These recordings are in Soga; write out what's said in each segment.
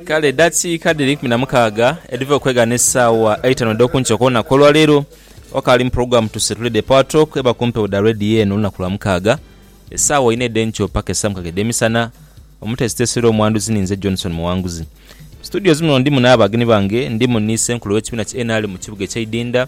Kale edhakiika dhiri eikumi na mukaaga edhiva okwegha n'esaawa eitanu edh'oku nkyo okw'olunaku olwaleero, wakaali mu pulogulaamu Tuseetule The Power Talk eba ku mpewo dha leediyo eno olunaku lwa mukaaga, esaawa inha edh'enkyo paka esaawa mukaaga edh'emisana. Omuteesiteesi era omwanduzi ni nze Johnson Muwanguzi. Mu situdiyozi muno ndimu n'abagenyi bange. Ndimu ni Ssenkulu w'ekibiina ki nrm mu kibuga eky'Eidhindha,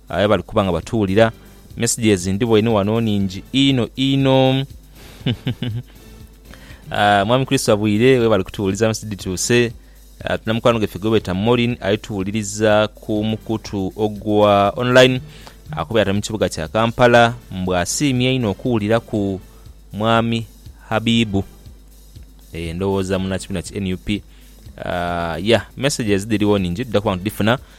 Aye bali kuba nga batuwulira. Messages ndhiboye ni wano nhingi inho inho. Aah Mwami Kristo abwire webale kutuwuliriza message dhituuse. Tulina mukwano gwaife gwebeeta Maureen ali tuwuliriza ku mukutu ogwa online akuba ali mu kibuga kya Kampala mbu asiimye inho okuwuliraku Mwami Habibu. Eeh ndhowooza munakibina ki nup. Aah yah messages dhirigho nhingi tudha kuba nga tudhifuna.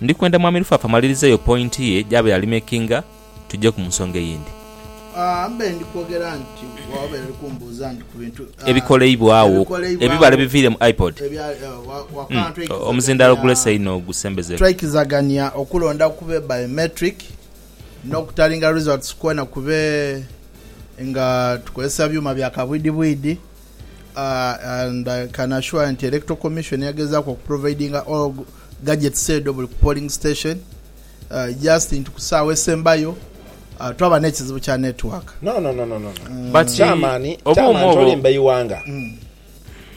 Ndi kwenda Mwami Lufafa amalirize eyo point ye gyaba yalimakinga tuje ku nsonga eyindi. Mbe ndi kwogera nti wabaire oli kumbuuza nti ku bintu ebikoleibwagho ebibale biviire mu iPod. Umm omuzindaalo gulese inho gusembeze. Twaikizagania okulonda kube biometric n'okutalinga results kwona kube nga tukozesa byuma bya kabwidhibwidhi and I can assure nti Electoral Commission yagezaaku okuprovidinga all Gadgets edho buli ku polling station just nti ku saawa esembayo twaba nekizibu kya network. No no no no But chairman chairman tolimba eighanga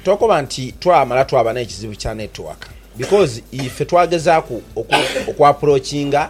tokoba nti twamala twaba nekizibu kya network because ife twagezaku oku approachinga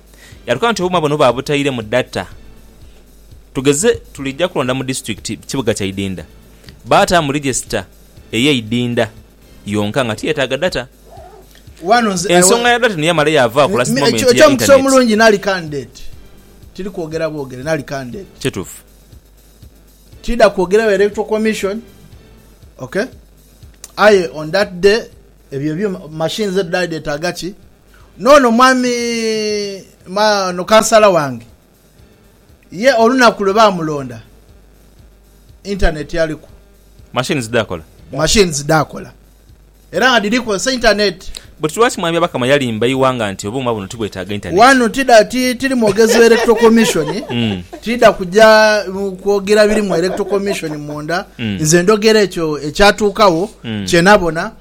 Yatuka nti obuma buno baabutaire mu data. Tugeze tuliija kulonda mu disitulikiti kibuga kya Idinda, baataamu rijesita ey'e Idinda yonka nga tiyetaaga data. Wano nze I Ensonga was- ya data eno yamala yaavaaku Mi- last mi- moment ekyo- ya eky'omukisa internet. omulungi nali candidate tiri kwogera bwogere nali candidate Kituufu. tidha kwogera wa electoral commission ok aye on that day ebyo ebyuma machines edho dhali dhetaaga ki N'ono mwami ma, no kansala wange, ye olunaku lwe baamulonda, intaneeti aliku. Machines dhaakola. Machines dhaakola. Era nga dhiri kozesa intaneeti. But lwaki Mwami Byabakama yalimba eighanga nti obuuma buno tibwetaaga intaneeti? Wano tidha, ti, tiri mwogezi wa Electoral Commission, tidha kuja kwogera biri mu Electoral Commission munda. Nze ndhogera ekyo ekyatuukagho, kye nabona.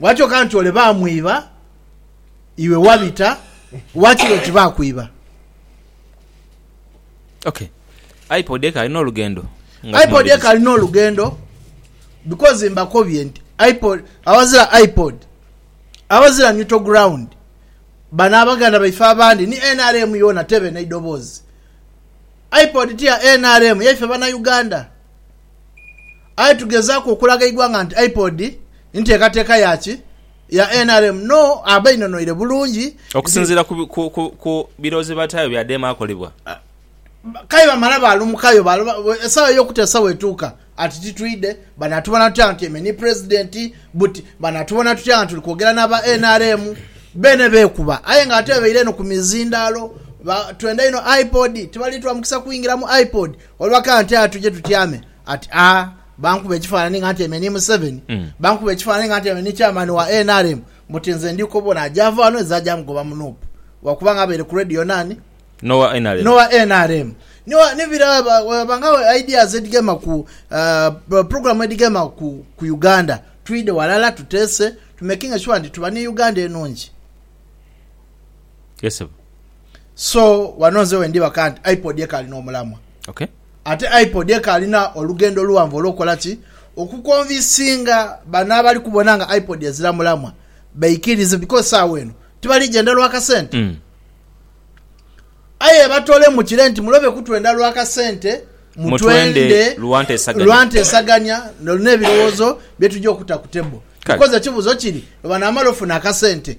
Bwatyo kanti ole baamwiba, iwe wabita, wakiri oti baakwiba. Ok. Ipod eka ali n'olugendo. nga Ipod tumaliriza. eka ali n'olugendo because mbakobye nti Ipod, abazira Ipod, abazira neutral ground, bano abaganda baife abandi ni nrm yoona tebe n'eidoboozi. Ipod ti ya nrm, yaife Banauganda. Aye tugezaaku okulaga eighanga nti IPOD nteekateeka ya ki ya nrm? No, aba inonoire bulungi nti. Okusinziira ku birowoozo bye bataayo bya dheema akolebwa. K'aye bamala baalumukayo esaawa y'okuteesa bw'etuuka ati titwidhe, banaatubona tutya nga tyaime ni Pulezidenti? Buti banaatubona tutya nga tuli kwogera n'aba nrm? Beene beekuba aye nga ate bebaire eno ku mizindaalo, twenda inho IPOD, tibali tuwa mukisa kwingira mu IPOD. Olwa ka nti aye tuje tutyame ati a bankuba ekifaanani nga ntyaime ni Museveni, bankuba ekifaanani nga ntyaime ni Chairman wa nrm buti nze ndi kobona agyava ghano ezo agya mugoba mu Nup lwakuba nga abaire ku Radio nani? N'owa nrm. N'owa nrm. Ni wa, ni bira aba, aba nga ideas edhigema ku, uh, program edhigema ku, ku Uganda. Twidhe ghalala tuteese, to making sure nti tuba ni Uganda enhungi. Yes sebo. So wano nze wendibaka nti iPod ekaali n'omulamwa. Okay. Ate iPod ekaalina olugendo luwanvu olw'okukola ki? Okukonvisinga bano abali kubona nga iPod ezira mulamwa beikirize because saawa eno tibali gyenda lwa kasente. Mm. Aye batolemu kire nti mulobe kutwenda lwa kasente, mutwende Mutwende lwa ntesaganya. lwa ntesaganya n'ebirowozo bye tugya okuta ku table. Kale. Because ekibuzo kiri lwe banaamala ofuna akasente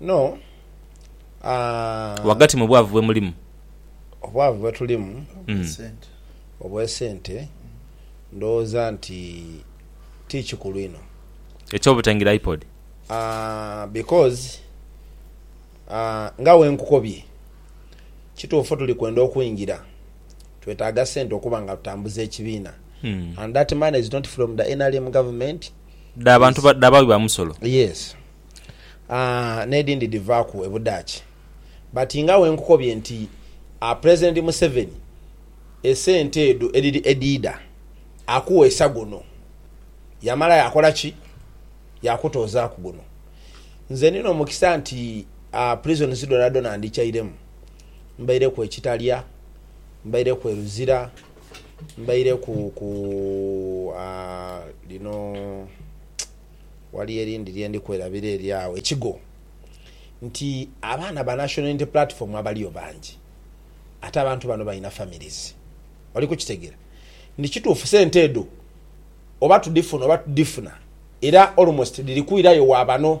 No, aah. Ghagati mu bwavu bwe mulimu. Obwavu bwe tulimu. Obw'esente. Obw'esente, ndowooza nti ti kikulu inho. Eky'obutangira iPod? Aah, because, aah, nga bwe nkukobye, kituufu tuli kwenda okwingira, twetaaga sente okuba nga tutambuza ekibiina and that money is not from the nrm government. Dha bantu ba- dha baghi ba musolo. Yes. Ah, n'edhindi dhivaaku e Budaaki. But nga we nkukobye nti ah, Pulezidenti Museveni esente edho edhi edhiidha akuweesa guno, yamala yaakola ki? Yaakutoozaaku guno. Nze ndi n'omukisa nti ah, prisons dhoonadhoona ndhikyairemu. Mbaireku e Kitalya, mbaireku e Luzira. mbaireku ku lino waliyo erindhi lye ndi kwerabira eri agho ekigo nti abaana ba National Unity Platform abaliyo bangi ate abantu bano balina families. Oli kukitegera nti kituufu sente edho oba tudhifuna oba tudhifuna era almost dhiri kwirayo wa bano.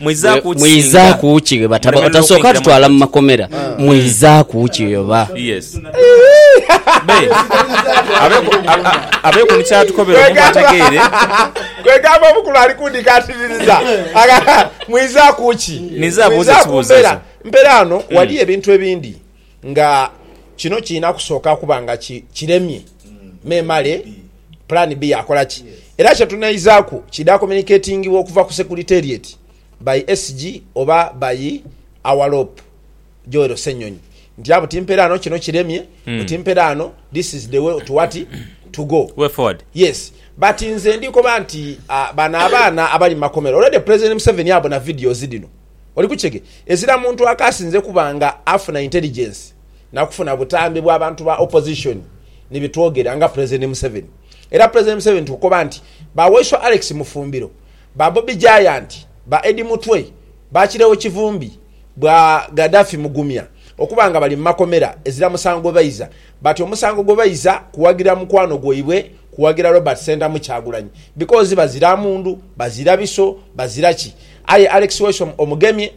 Mwizaaku ki ghe batasooka tutwala mu makomera? Mwizaaku ki oba? Abeeku ni ky'atukobera omuntu ategeere. Kwegamba omukulu ali kundikaatiriza. Mwizaaku ki? Mwizaaku mbera. Mperaano waliyo ebintu ebindi. nga kino kirina kusooka kuba nga kiremye memale plan B yakola ki? Era kyetunaizaaku kidha communicatingibwa okuva ku Secretariat by SG oba by our Lop Joel Ssenyonyi nti abuti mperaano kino kiremye buti mperaano this is the way to what? to go. Way forward. Yes but nze ndikoba nti bano abaana abali mu makomera already President Museveni abona videos dhino. Oli ku kighe? Ezira muntu akaasinze kuba nga afuna intelligence na kufuna butambi bwa bantu ba opposition ni bitwogera nga President Museveni. Era President Museveni tukukoba nti ba Waiswa Alex Mufumbiro, ba Bobi Giant, ba Eddie Mutwe, ba Kireewo Kivumbi, bwa Gaddafi Mugumya okuba nga bali mu makomera ezira musango baiza bati omusango gwe baiza kuwagira mukwano gwaibwe kuwagira Robert Ssentamu Kyagulanyi because bazira mundu, bazira biso, bazira ki. Aye Alex Wesome Omugemye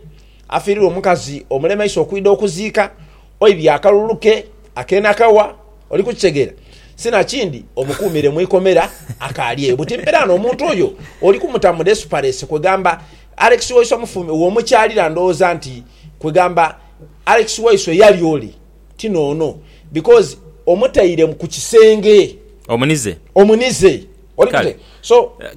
afiirirwa omukazi omulemeisa okwidha okuziika oidhi akalulu ke ak'enakawa, oli kukitegeera, si na kindi omukuumire mu ikomera akaali eyo. Buti mpera ano omuntu oyo oli kumuta mu desperesi kwegamba Alex waisu amufumbe w'omukyalira ndowooza nti kwegamba Alex waisu eyali ole ti n'ono because omutaire ku kisenge. Omunize. Omunize. Kale.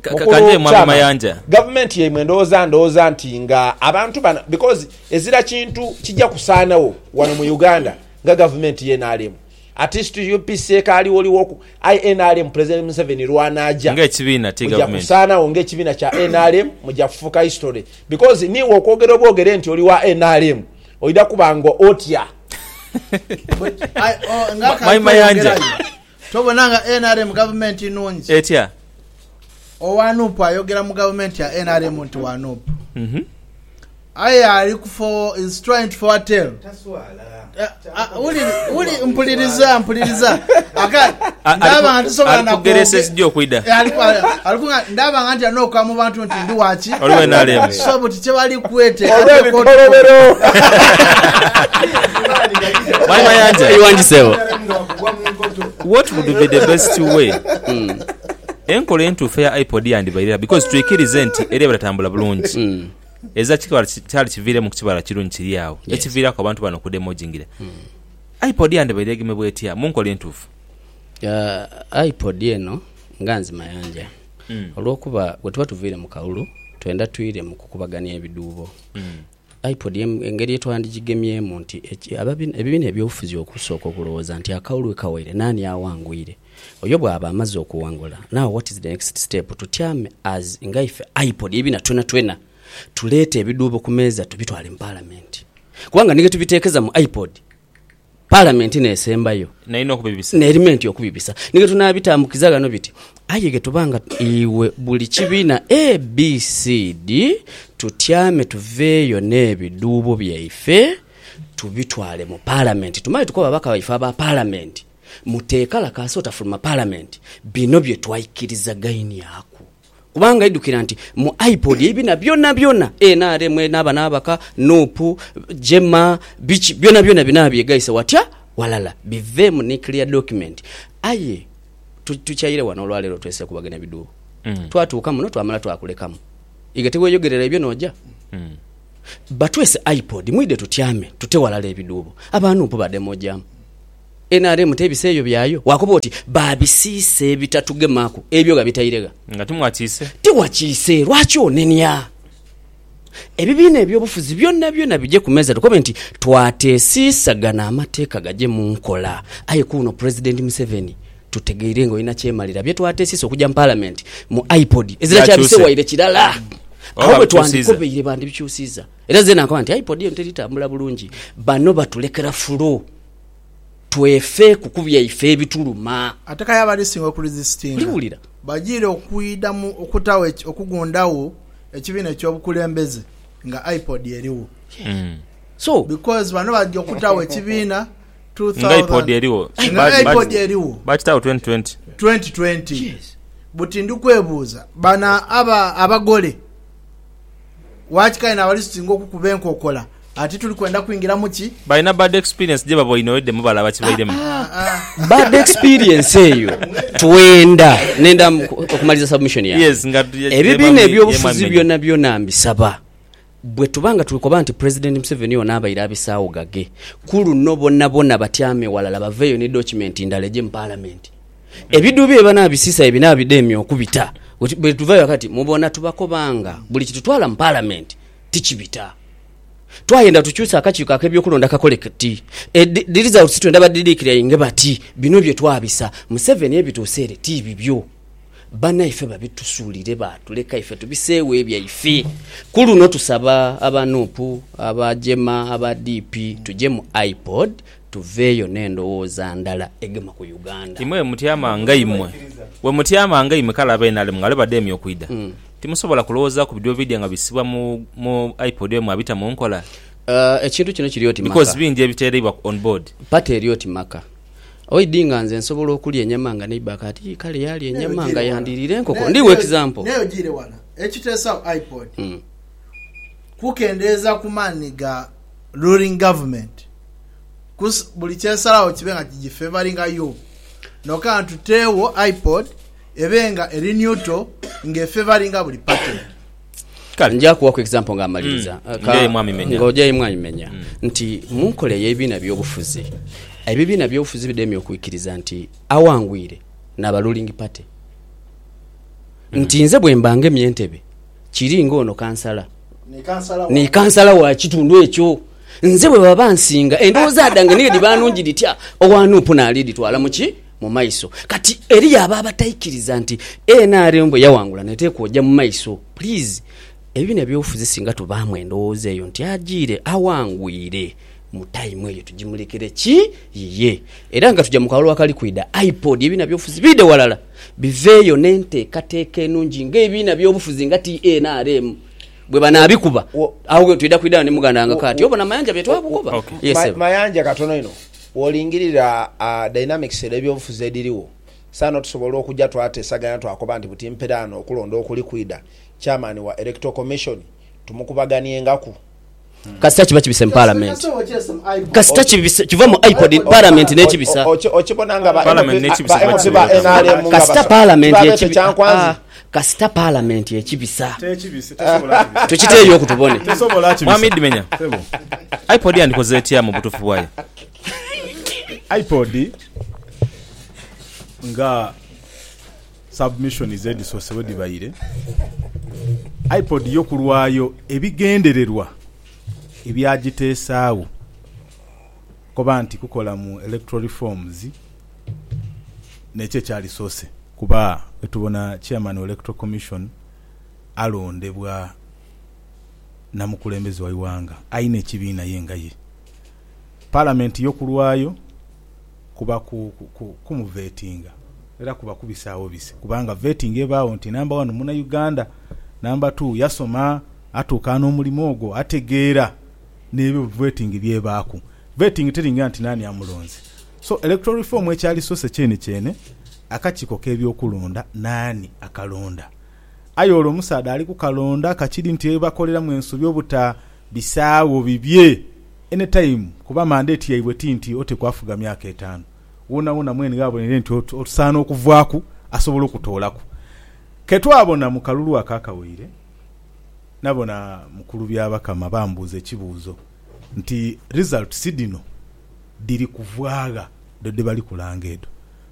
Ka- ka- kanje mwange Mayanja. gavumenti yaimwe ndowooza ndowooza nti nga abantu bano because ezira kintu kija kusaanagho wano mu Uganda nga gavumenti ye nrm atist UPC ekaaliwoliwoku aye nrm president Museveni lwanaja Nga ekibiina ti muja gavumenti. kusaanagho nga ekibiina kya nrm muja kufuuka history because niiwe okwogera obwogere nti oli wa nrm oidha kuba nga otya Aye, oh, nga Ma- akantu Mayi Mayanja. ayongerayo. Tobona nga nrm gavumenti nungi? Etya? Owa nup ayogera mu gavumenti ya nrm nti wa nup aye ali ku for is trying to foretell wuliri mpuliriza mpuliriza ndabanga tisobola nakwoge ndabanga ntya noka mu bantu nti ndi waki so buti kyebali kwete Mwalimu Ayanja. Iwangi sebo. What would be the best way? Enkola entuufu eya iPod yandibaire gha because twikirize nti eri abatatambula bulungi. Ezira kikaba kyali kiviiremu ku kibala kirungi kiri agho ekiviiraku abantu bano okudema ojingira. iPod yandibaire egemebwa etya mu nkola entuufu? Ah, iPod eno nga nzimayanja olw'okuba bwe tuba tuviire mu kalulu twendha twire mu kukubagania ebidhuubo. Ipod engeri ye twandigigemyemu nti ebibiina eby'obufuzi okusooka okulowooza nti akaulu we kawaire naani awangwire. Oyo bwaba amaze okuwangula, now what is the next step? Tutyame as nga ife Ipod ebibiina twenatwena tuleete ebidhuubo ku meeza tubitwale mu Palamenti. Kubanga ni ghe tubiteekeza mu Ipod. Palamenti n'esembayo. N'eri n'okubibisa. N'erimenti okubibisa. Ni ghe tunaabitambukiza ghano biti, aye ghe tuba nga iwe buli kibiina ABCD tutyame tuveeyo n'ebidhuubo byaife tubitwale mu Palamenti tumale tukobe ababaka baife aba Palamenti muteekalakaasa otafuluma Palamenti bino bye twaikirizagainiaku. Kubanga idhukira nti mu iPod ebina byonabyona nrm eno aba n'abaka, nup, Jema, biki, byonabyona bino abyegaise watya walala biveemu ni clear document. Aye tukyaire wano olwaleero twesekubagania bidhuubo. Twatuuka muno twamala twakulekamu. Iga tiweeyogerera ebyo nooja? Batwese iPod mwidhe tutyame tute walala ebidhuubo. Aba nup badhemoojaamu. nrm tebisa eyo byayo wakoba oti babisiisa ebitatugemaku ebyo gha bitaire gha. Nga timwakiise. Tiwakiise lwaki onenia? Ebibiina ebyobufuzi byona byona bije ku meeza tukobe nti twatesiisa gano amateeka gaje mu nkola aye kuuno president Museveni tutegeire nga olina kyemalira bye twatesiisa okuja mu palamenti mu IPOD ezira kyabise waire kirala agho bwetwandikobeire bandibikyusiiza era zena nkoba nti IPOD eno teritambula bulungi bano batulekera fulu. twefe ku ku byaife ebituluma. Ate kale abali singa okurizisitinga bajiire okwidhamu okutagho okugundhagho ekibiina eky'obukulembeze nga IPOD erigho. Because bano baja okutagho ekibiina nga IPOD erigho, baakitagho twenty twenty twenty twenty. Buti ndi kwebuuza bano abagole. Waki kale n'abali tusinga okukuba enkokola ati tuli kwenda kwingira mu ki? Balina bad experience gye baboine already mwe balaba kibairemu. Bad experience eyo twenda nenda okumaliza submission yange. Yes, nga tu- ye- Ebibiina ye- ebyobufuzi ye- byona byona mbisaba bwe tuba nga tuli koba nti President Museveni ono abaire abisaawo gage, ku luno bonabona batyame walala baveeyo ni document ndala egye mu Parliament. Ebidhu bye banaabisisa ye binaabidemya okubita. Bwe tuva ghaka ti mubona tubakoba nga buli kitutwala mu Palamenti tikibita. Twayenda tukyusa akakiiko ak'ebyokulonda kakole kati dhi results twenda badidikirainge bati bino bye twabisa Museveni ye bituuse ere ti bibyo. Banaife babitusuulire baatuleka ife tubiseegho ebyaife. Ku luno tusaba aba nup, aba Jema, aba DP tuje mu IPOD Tuveeyo n'endowooza ndala egema ku Uganda. Imwe bwemutyama nga imwe. Bwemutyama nga imwe kale abe nrm nga lwe bademye okwidha, timusobola kulowoozaku bidyo bidya nga bisibwa mu mu iPod emu abita mu nkola? Ekintu kino kiri oti maka. Because bingi ebiteereibwa on board. Party eri oti maka. Oidi nga nze nsobola okulya enyama nga neighbour ka ati kale yaalya enyama nga yandiiriire enkoko. Ndi wa example. Naye ojiire wala. Ekiteesagho iPod kukendeeza ku maani ga. ruling government kusa buli kyesalagho kibe nga kigifevaringa yo noka nga tutewo IPOD ebe nga eri neutral nga efevaringa buli party. Kale nja kuwaku example nga amaliriza hmm. nga ojayo mwami menya hmm. nti munkola eyebibiina byobufuzi ebibiina byobufuzi bidemye okwikiriza nti awangwire naba ruling party nti nze bwembanga emyentebe Kiri ng'ono kansala ni kansala wa kitundu ekyo. Nze bwe baba bansinga, endowooza dhange ni dhiba nungi dhitya, owa nup naaliidhitwala mu ki? Mu maiso. Kati eriyo abo abataikiriza nti nrm bwe yawangula n'eteekwa oja mu maiso. Please, ebibiina ebyobufuzi singa tubaamu endowooza eyo nti ajiire, awangwire. Mu time eyo tujimulekere ki? Yiye. Era nga tuja mu kalulu akali kwidha, iPod, ebiina byobufuzi biidhe ghalala biveeyo n'enteekateeka enungi nga ebiina byobufuzi nga TA NRM bwe banaabikuba. Agho ghoo twidha kwidha ni muganda wange Kaati. Obona Mayanja bye twabukoba? Yes Ssebo. Mayanja katono inho, bw'olingirira dynamics edh'ebyobufuzi edhirigho, saano tusobola okuja twateesaganya twakoba nti buti mperaano okulonda okuli kwidha, Chairman wa Electoral Commission tumukubaganiengaku. kasita kiba kibise mu palamenti, kasita kiva mu IPOD palamenti nekibisa, kasita palamenti ekibisa kasita palamenti ekibisa tukiteeyo oku tubone. Mwami Dimenya, IPOD yandikoze etya mu butuufu bwayo? IPOD nga Submissions edhisoose bwe dhibaire, IPOD yo ku lwayo ebigendererwa ebyagiteesaagho koba nti kukola mu electoral reforms n'ekyo ekyali soose. Kuba bwetubona Chairman wa Electoral Commission alondebwa na mukulembeze wa ighanga aina ekibiina ye nga ye. Parliament yo ku lwayo. kuba ku, ku, ku, kumuvetinga, era kuba kubisaawo bise, kubanga vetting ebaagho nti namba wanu muna Uganda, namba tuu yasoma, atuuka n'omulimo ogwo, ategeera n'ebyo vetting by'ebaaku. Vetting teringa nti naani amulonze. So, Electoral Reform ekyali source kyene kyene, akakiiko k'ebyokulonda, naani akalonda? Aye olwo omusaadha ali ku kalonda ka kiri nti ebibakoleramu ensobi obutabisaagho bibye anytime, kuba mandate yaibwe ti nti otekwa afuga myaka etaanu. Woonawoona mwene ghabonere nti osaana okuvaaku asobola okutoolaku. Ke twabona mu kalulu ako akawaire, nabona Mukulu Byabakama bambuuza ekibuuzo nti, Results dhino dhiri kuvaagha dho dhe bali kulanga edho?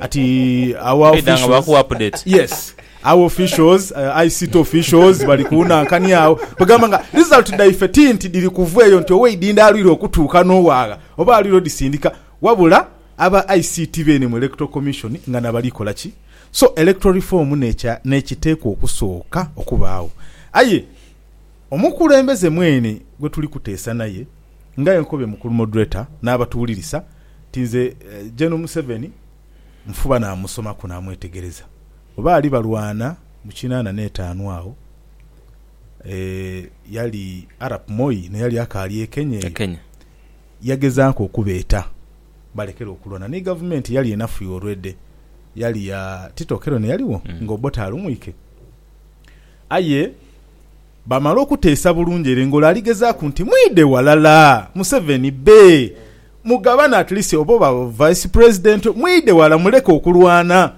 Ati our Beidha nga baku officials update. yes our officials uh, ict officials bali kunhankani agho kwegamba nga result dhaife ti nti dhiri kuva eyo nti oweidhindha alwire okutuuka n'owaagha oba alwire odhisindika wabula aba ict beene mu electoral commission nga nabali kola ki so electoral reform nekya nekiteekwa okusooka okubaagho aye omukulembeze mweene gwetuli kuteesa naye nga enkobe mukulu moderator n'abatuwulirisa nti nze Gen Museveni nfuba namusomaku namwetegereza oba ali balwana mu kinana n'etaanu agho yali Arap Moi n'eyali akaali e Kenya eyo yagezaaku okubeeta balekere okulwana ni gavumenti eyali enafu ya olwedhe yali ya Tito Okello n'eyaligho nga Obote alumwike aye Bamala okuteesa bulungi ere ngolo aligezaaku nti mwidhe walala Museveni bbe mugabane at least oba oba vice president mwidhe wala muleke okulwana.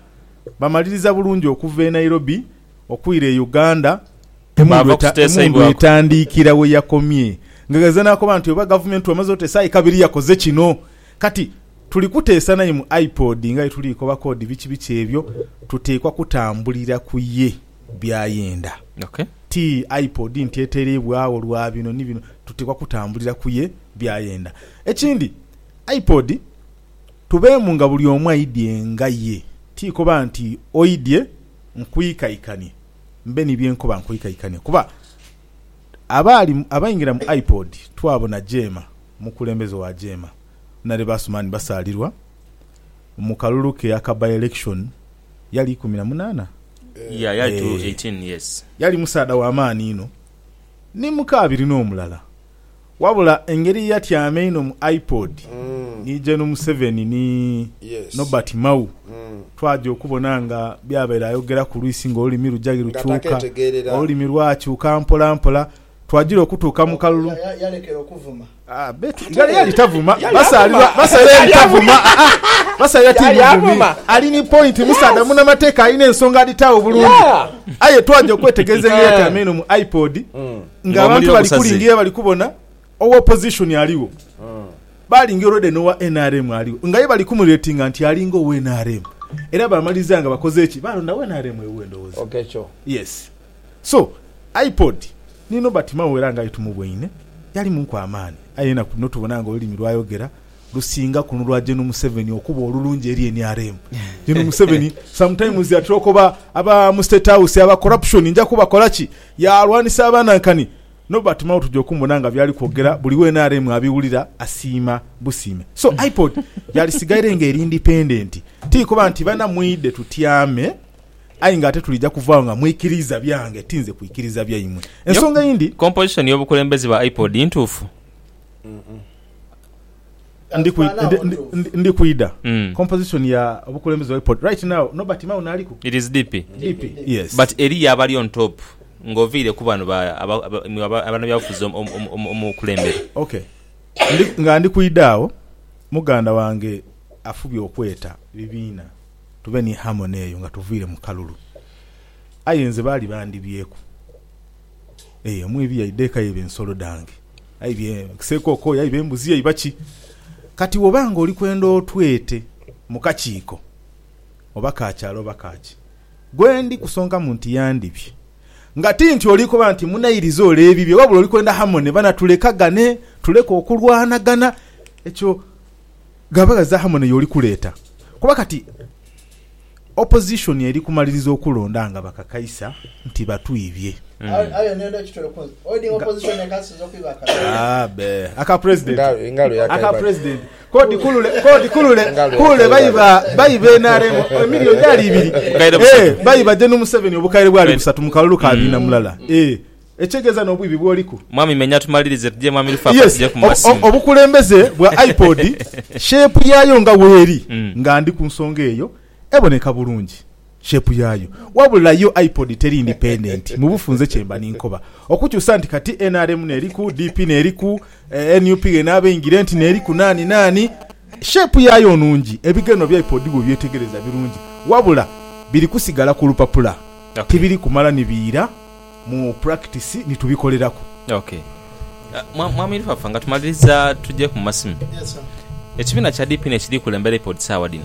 Bamaliriza bulungi okuva e Nairobi okwira e Uganda emundu emundu etandiikira weyakomye nga ghazira nakoba nti oba gavumenti wamaze oteesa aye kabiri yakoze kino kati tuli kuteesa naye mu IPOD nga bwetuli koba kodi biki biki ebyo tuteekwa kutambulira kuye. by'ayenda. Ti iPod nti etereibwagho lwa bino ni bino, tuteekwa kutambulira ku ye by'ayenda. Ekindi, iPod tubeemu nga buli omu aidhie nga ye, ti koba nti oidhie nkwiikaikanie mbe ni bye nkoba nkwiikaikania kuba abaali abaingira mu iPod twabona Jeema, omukulembeze wa Jeema, Naleba Asuman Basaalirwa mu kalulu ke aka by-election. Yali ikumi na munaana? Yeah, yali tu Eeh. 18, yes. Yali musaadha wa maani inho, ni muka abiri n'omulala. Wabula engeri ye yatyama einho mu iPod, ni Gen. Museveni ni Yes. Norbert Mao, twaja okubona nga by'abaire ayogeraku lwisi ng'olulimi luja ghe Nga lukyuka, takeetegeerera. olulimi lwakyuka mpolampola. Twagira okutuuka mu kalulu. Ghale yali tavuma basaalirwa basaalirwa yali tavuma basaalirwa ti muvumi ali ni point musaadha munamateeka alina ensonga adhitaawo bulungi aye twaja okwetegereza engeri yatyaama eno mu ipod nga abantu bali kulingiria bali kubona owa opposition aligho baalingira already n'owa nrm aligho nga ye bali kumuratinga nti alinga owa nrm era baamaliriza nga bakoze ki baalonda nrm ewuwe ndowooza yes So iPod ni Nobert Mao era nga aye tumubweine yali munku amaani aye enaku dhino tubona nga olulimi lwayogera lusinga kuno lwa Gen Museveni okuba olulungi eri nrm. Gen Museveni sometimes atera okoba aba mu State House aba corruption nja kubakola ki? Yalwanisa abanankani. Nobert Mao tuja okumubona nga byali kwogera buli wa nrm abiwulira asiima busiime. So iPod yalisigaire nga eri independent ti kuba nti bana mwidhe tutyame. Aye nga ate tulija kuvaagho nga mwikiriiza byange, ti nze kwikiriiza byaimwe. Ensonga eyindi. Composition y'obukulembeze bwa iPod ntuufu? Ndi kwi, ndi, ndi, ndi, ndi kwidha. Mm. Composition ya obukulembeze bwa iPod. Right now, Nobert Mao naaliku? It is DP. DP, yes. But eriyo abali on top nga oviire ku bano ba, aba, aba, mwe aba- abanabyabufuzi omu- omu- omu- omu- omukulembere. Okay. Ndi, nga ndi kwidha agho, muganda wange afubye okweta bibiina. tuve ni harmony eyo nga tuviire mu kalulu. Aye nze baali bandibyeku eyo emwiidhi yaidha eka yaiba ensolo dhange, aidha esekooko, yaiba embuzi, yaiba ki. Kati bw'oba nga oli kwenda otwete mu kakiiko oba ka kyalo oba ka ki, gwendi kusonkamu nti yandibye. Nga ti nti oli koba nti munairiza ole ebibye wabula oli kwenda harmony bana tulekagane, tuleke okulwanagana. Ekyo. Ghaba gha zaaha mwene y'oli kuleeta? Kuba kati Opposition eri kumaliriza okulonda nga bakakaisa nti batwibye. Aka President k'odi kulule kulule baiba nrm emillion dhaali ibiri, baiba Gen Museveni obukaire bwali busatu mu kalulu ka biina mulala. Ekyegeeza n'obwibi bwoliku. Mwami menya tumalirize tuje mwami Lufafa tuje ku masimu. Obukulembeze bwa iPod shape yaayo nga weeri nga ndi ku nsonga eyo eboneka bulungi shape yaayo wabula yo iPod teri independent mu bufunze kyemba ninkoba okukyusa nti kati nrm n'eriku, DP n'eriku, nup ghenaba eingire nti n'eriku naani naani shape yaayo nnungi ebigendererwa bya iPod bw'obyetegereza birungi wabula biri kusigala ku lupapula tibiri kumala ni biira. mu practice ni tubikoleraku. Ok Mwami Lufafa nga tumaliriza tujeku mu masimu. Ekibiina kya DP n'ekiri kukulembera IPOD saagha dhino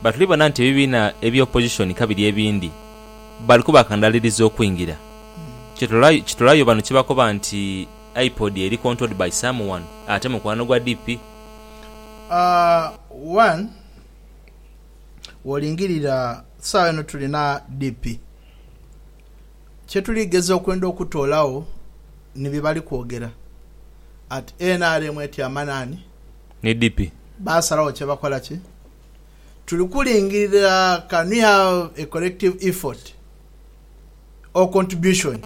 bba tuli bona nti ebibiina ebya opposition ka biri ebindi bali kubakandaaliriza okwingira. Kitolayo bano kye bakoba nti IPOD eri controlled by someone ate mukwano gwa DP? Aah one wolingirira saagha eno tulina DP. Kye tuli geza okwenda okutoolagho ni bye bali kwogera at nrm eti amanani ni DP baasalagho kye bakola ki? Tuli kulingirira can we have a collective effort or contribution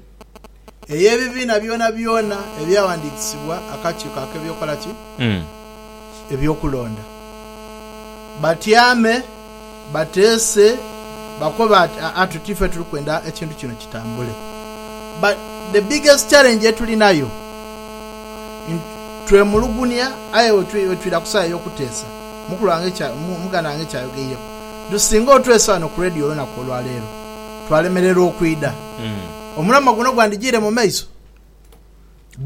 ey'ebibiina byonabyona ebyawandiikisibwa akakiiko ak'ebyokukola ki? eby'okulonda batyame. bateese bakoba ati aa tuti ife tuli kwenda ekintu kino kitambule but the biggest challenge etulinayo twemulugunia aye wetwira ku sawa eyokuteesa mukulu wange kya muganda wange kyayogeireku nti singa otwese wano ku radio olunaku olwaleero twalemererwa okwida mm. omulamwa guno gwandijiire mu maiso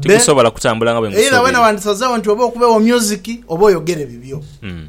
tigusobola kutambula nga bwemusuubira. Either wena wandisazeewo nti oba okubeewo music oba oyogere bibyo. Mm.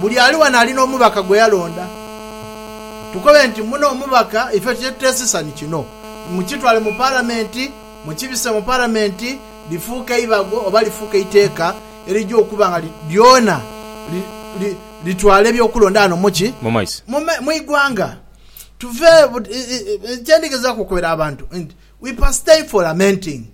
Buli ali wano ali n'omubaka gwe yalonda. Tukobe nti, Muno omubaka ife kye tuteesisa ni kino, mukitwale mu Palamenti, mukibise mu Palamenti, lifuuke eibago oba lifuuke eiteeka erija okuba nga lyona litwala eby'okulonda ghano mu ki? Mu igwanga. Tuve, kye ndigezaaku okobera abantu nti, We pastay for lamenting,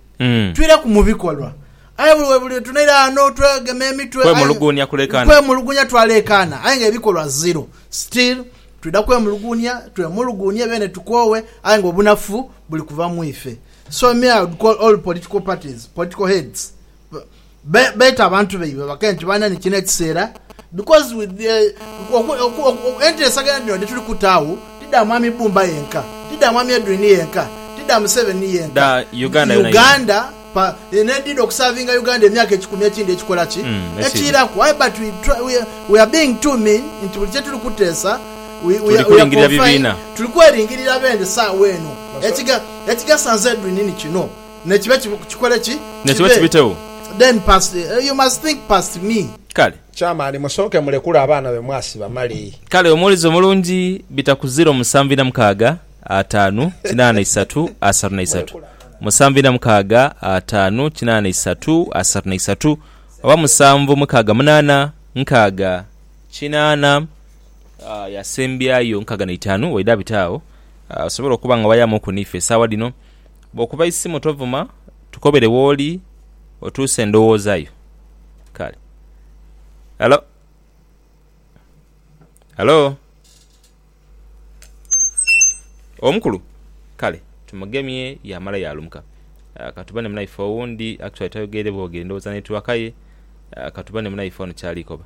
twire ku mu bikolwa. Aye buli we buli lwe tunaira ghano twegema emitwe, aye Kwemuluguunia kuleekaana. Kwemuluguunia twaleekaana, aye nga ebikolwa zero. Still, twidha kwemuluguunia, twemuluguunie beene tukoowe, aye nga obunafu buli kuva mu ife. So me I would call all political parties, political heads, Be- beeta abantu baibwe bakee nti bana ni kino ekiseera because with the, oku- oku- oku- enteesagana dhino dhi tuli kuta agho ti dha mwami Bbumba yenka ti dha mwami Edwin yenka ti dha Museveni yenka Dha Uganda yona yona. Uganda pa, n'edhidha okusavinga Uganda emyaka ekikumi ekindi ekikola ki Mm, ekindi. ekiiraku aye but we, try, we, are- we are being too mean nti buli kyetuli kuteesa we, we, Tuli are- we are kulingirira confined- bibiina. tuli kweringirira bende saawa eno Ekiga- ekigasa nze Edwin ni kino Ne kibe ki, kikole ki? Ne kibe kibitegho. Then past, you must think past me. Kale. Chairman, musooke mulekule abaana be mwasiba male. Kale, omuwulize omulungi, bita ku ziro musanvu ina mukaaga, ataanu, kinaana isatu, asatu na isatu. Musanvu ina mukaaga, ataanu, kinaana isatu, asatu na isatu, oba musanvu mukaaga munaana, nkaaga, kinaana, ah, yasembyayo nkaaga na itaanu, waidha abite agho, ah, osobole okuba nga wayamuku n'ife esaawa dhino. Bw'okuba isimu tovuma, tukobere w'oli otuuse endowooza yo. Kale. Halo? Halo? Omukulu? Kale, tumugemye yaamala yaalumuka. Ka tubone munaife owundi. Actually tayogeire bwogere, ndowooza netiwaka ye. Ka tubone munaife ono ky'ali koba.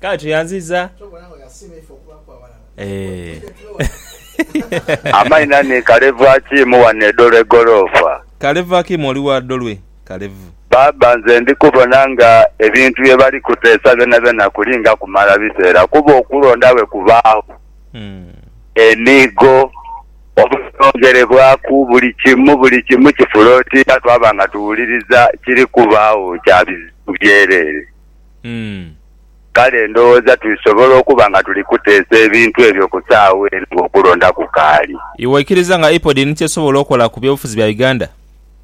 Kale tuyanziza eeh. Amaina ni Kalevu Akiimu wano e Dolwe Golofa. Kalevu Akiimu oli wa Dolwe Kalevu. Baaba nze ndi kubona nga ebintu bye bali kuteesa byonabyona kulinga kumala biseera kuba okulonda bwe kubaagho emiigo. Obutongerebwaku buli kimu, buli kimu kifula oti nga twaba nga tuwuliriza kiri kubaagho kya bizibu byereere. Kale ndowooza tulisobola okuba nga tuli kuteesa ebintu ebyo ku saagha eno ng'okulonda kukaali. Iwe oikiriza nga IPOD ni ky'esobola okola ku by'obufuzi bya Uganda?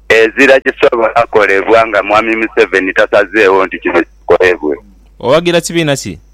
Ezira kisobola kolebwa nga Mwami Museveni tasazeegho nti kino kikolebwe. Owagira kibiina ki?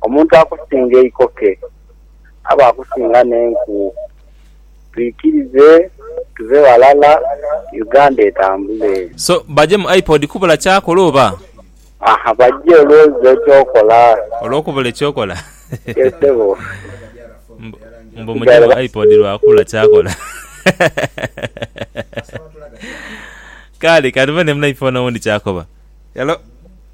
Omuntu akusinga eikoke aba akusinga n'enku. Twikirize tuve ghalala Uganda etambule. So baje mu iPod kubula kyakola oba? Aha baje olwozza ekyokola. Olwokubula ekyokola? Ye ssebo. Mbu muje mu iPod lwa kubula kyakola. Kale kandibone munaifone owundi kyakoba. Hello.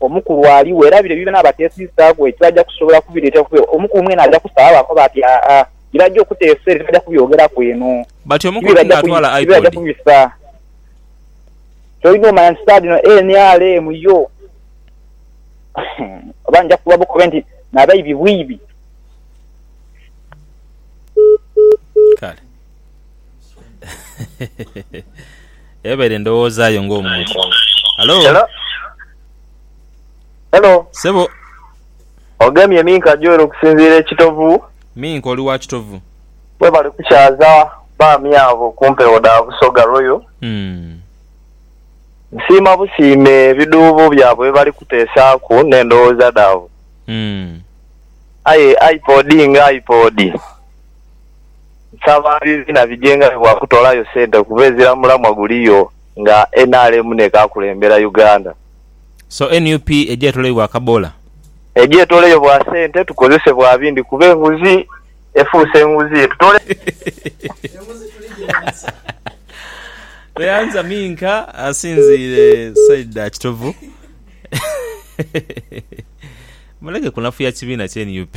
Omukulu ali werabire byona abatesiisaaku ekyo aja kusobola kubireetera kuba omukulu mwene aja kusaba baakoba ati aa bye baja okuteesa ere tibaja kubyogeraku eno But omukulu ti naatwala ti bye baja iPod? kubisa. Ky'olina omanya nti saagha dhino nrm yo oba nja kukuba bukobe nti nabaibi bwiibi. Kale. Ebaire ndhowooza yo ng'omuntu. Halo? Hello? Hello? Sebo, Ogemye Minka Joel okusinziira e Kitovu. Minka oli wa Kitovu? Webale kukyaza baami abo ku mpewo dha Busoga Royal. Hmm. Nsiima busiime ebidhuubo byabwe bye bali kuteesaaku n'endhowooza dhaabwe. Hmm. Aye iPod nga iPod. Nsaba bibiina bijenga bye bwa kutolayo sente kuba ezira mulamwa guliyo nga nrm nekakulembera Uganda. So nup eje etoloyo bwa kabola? Eje etoleyo bwa sente tukozese bwa bindi kuba enguzi efuuse nguzi etutole. The answer minka asinziire side dha kitovu muleke kunafuya kibiina kye nup.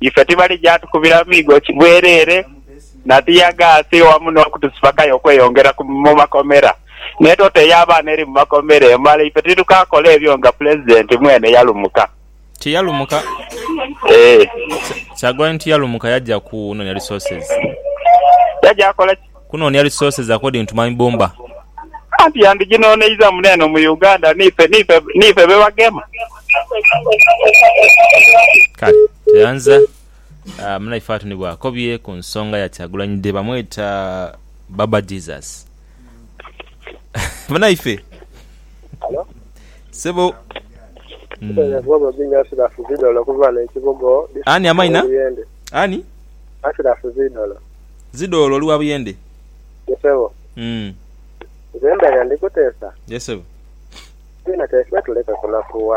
ife tibalija tukubira miigo bwereere na ttiyagaasi wamu n'okutusibakayo okweyongera mu makomera. N'etota ey'abaana eri mu makomera emala ife titukakola ebyo nga Pulezidenti mwene yalumuka. Tiyalumuka? Eeh. Kyagulanyi tiyalumuka yaja kunonia resources. Yaja kukola ki? Kunoonia resources according to my bumba. Anti yandiginoneiza mune eno mu Uganda niife niife niife bebagema. Kale tweyanza munaife watu ni bwakobye ku nsonga ya Kyagulanyi Dee bamweta Baba Jesus munaife sebo Ani amaina? Ani? Zidha olwo oli wa buyende. Ye sebo. Nze ndagha ndikuteesa. Ye sebo. Aye nateese tuleke kunakuwa.